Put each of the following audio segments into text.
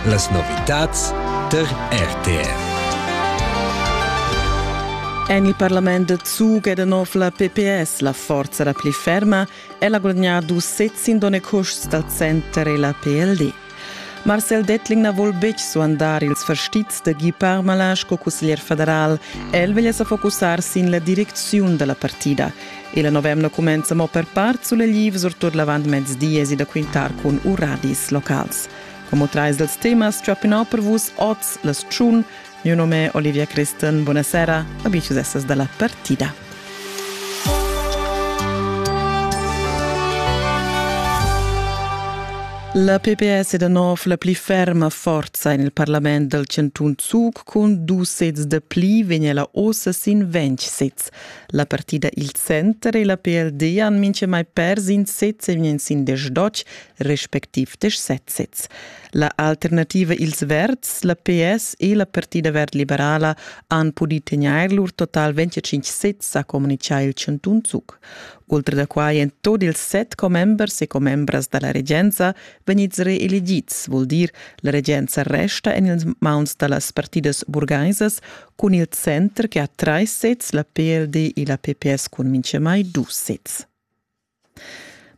Las novitads tar RTF. En il parlament da Zug è da nov la PPS la forza la pli ferma. Ella ha guadagnato sez in donne custs dal center e la PLD. Marcel Dettling na vul betg suandar ils fastizs da Guy Parmalin sco cusseglier federal. El veglia sa focussar sin la direcziun da la partida. Il november cumenza mo per part sulegliv, surtut l'avantmezdi èsi da quintar cun uradis locals. Como trais dels temas ciappinau per vus oz las tschun. Mio nome Olivia Christen, buonasera, amici essas dalla partida. La PPS è da nov la pli ferma forza en il parlament dal Cantun Zug cun dus sezs da pli vegn ella ossa sin ventg sezs. La partida Il Center e la PLD han mintgamai pers in sez e vegn sin desdotg respectiv desch sezs. La alternativa Ils Verds, la PS e la Partida Verd Liberala han pudì tegnair lur total 25 sezs, ha communitgà il chantun Zug. Oltre da quai èn tot ils set commembers e commembras da la regenza vegnids reelegids, vul dir la regenza resta en ils mauns da las partidas burgaisas cun il center che ha trais sezs, la PLD e la PPS cun mintgamai dus sezs.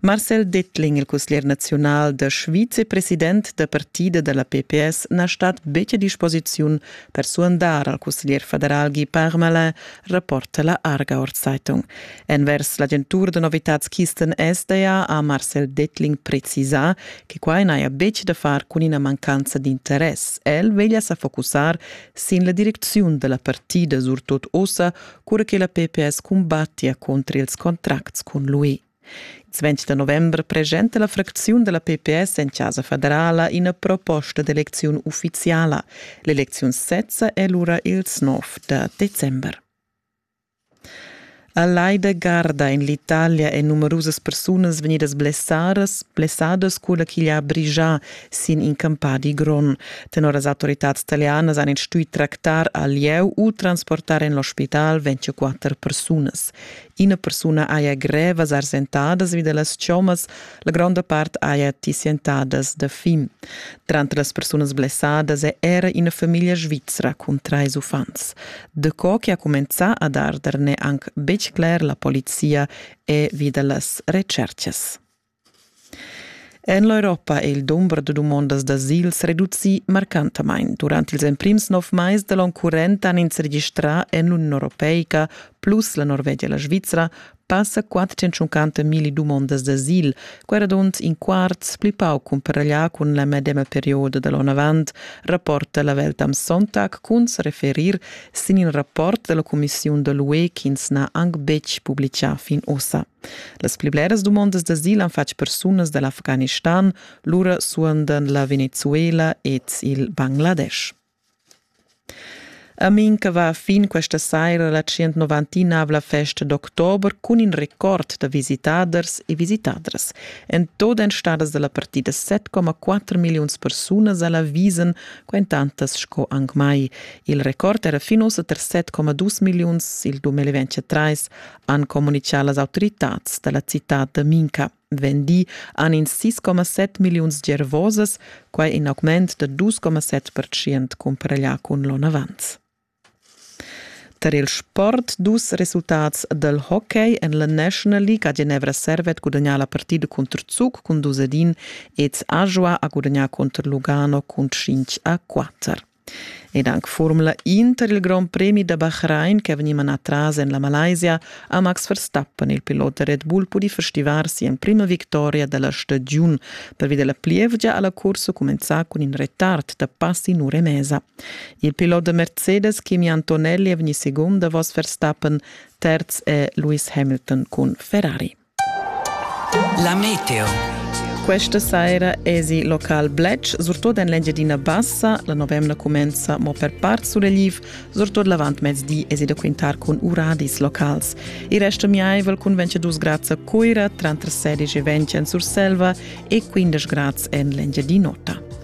Marcel Dettling, il cusglier naziunal da Schweiz e president da partida da la PPS, na stat betg a disposiziun per suandar al cusglier federal Guy Parmelin, rapporta la Arga Zeitung. Envers l'agentur da novitads Kisten SDA ha Marcel Dettling precisà che quai n'haja betg da far cun ina mancanza d'interess. El veglia sa focussar sin la direcziun da la partida surtot ossa, cura che la PPS cumbattia contra ils contracts cun l'UE. Il 20 da novembre presenta la fracziun della PPS en Casa Federala ina proposta d'elezione ufficiala. L'elezione sezza è lura ils 9 de december. A Laida Garda en l'Italia èn numerusas persunas vegnidas blessadas, blessadas cura ch'igl ha brigià sin in campadi grond. Tenor las autoritads talianas han ins stuì tractar al lieu u transportar en l'ospital 24 persunas. Ina persuna haja grevas arsentadas vi da las chommas, La gronda part haja ti sientadas da fin. Tranter las persunas blessadas è era ina famiglia svizra cun trais uffants. Daco che ha cumenzà ad arder n'è anc betg cler, la polizia è vi da las retschertgas. En l'Europa è il dumber da dumondas d'asils reducì marcantamain. Durant ils emprims nov mais da l'onn current han ins registrà en l'Union Europeica plus la Norvegia e la Svizra Passa quattentschuncanta milli dumondas d'asil, quera dunt in quarts pli pauc cumpareglià cun la medema perioda da l'onavant, rapporta la Welt am Sonntag cun se referir sin in rapport della Commissiun da l'UE ch'ins n'ha anc betg publichà fin ossa. Las pli bleras dumondas d'asil han fatg persunas dall'Afghanistan, lura suondan la Venezuela ed il Bangladesch. Amin che va fin questa saira la 199 festa d'october cun in record da visitaders e visitadras. En tot èn stadas dalla partida 7,4 milliuns persunas alla visen quentantas sco anc mai. Il record era fin ussa ter 7,2 milliuns il 2023, han comunicà las autoritads dalla citad da Minca. vendì han ins 6,7 milliuns gervosas, quai in augment da 2,7 percent cumparaglià cun l'onn avant. Tar il sport dus resultats dal hockey en la National League a Genevra Servet gudagnà la partida contr Zug cun dus ad in ed Ajua ha gudagnà contr Lugano cun 5 a 4. Ed anc Formula Inter il Grand Premi da Bahrain che ha vegnì manà tras en la Malaysia ha Max Verstappen, il pilot da Red Bull, pudì festivar si'emprima victoria da la stagiun. Pervi da la plievgia ha la cursa cumenzà cun in retard da pass in ura e mesa. Il pilot da Mercedes Kimi Antonelli è vegnì segund davos Verstappen, terz è Lewis Hamilton cun Ferrari. La meteo. Questa saira esi local Bletsch, surtut en l'Engiadina Bassa. La novemna cumenza mo per part sulegl, surtut l'avantmezdi esi da quintar cun uradis locals. Il resto miaivel cun 22 grads a Cuira, tranter 16 e 20 en Surselva e 15 grads en l'Engiadin'Ota.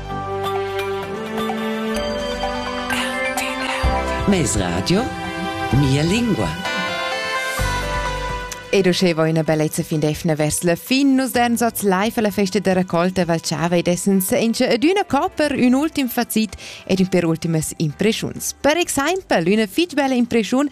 Mes radio Mia lingua. Ed uscheva üna bellezza fin defna vers la fin, nus den zots live alla festa da raccolta Valchava ed essen senza ed üna copper, ün ultim facit ed ün per ultimas impreschuns. Per exaimpel üna fitg bella impreschiun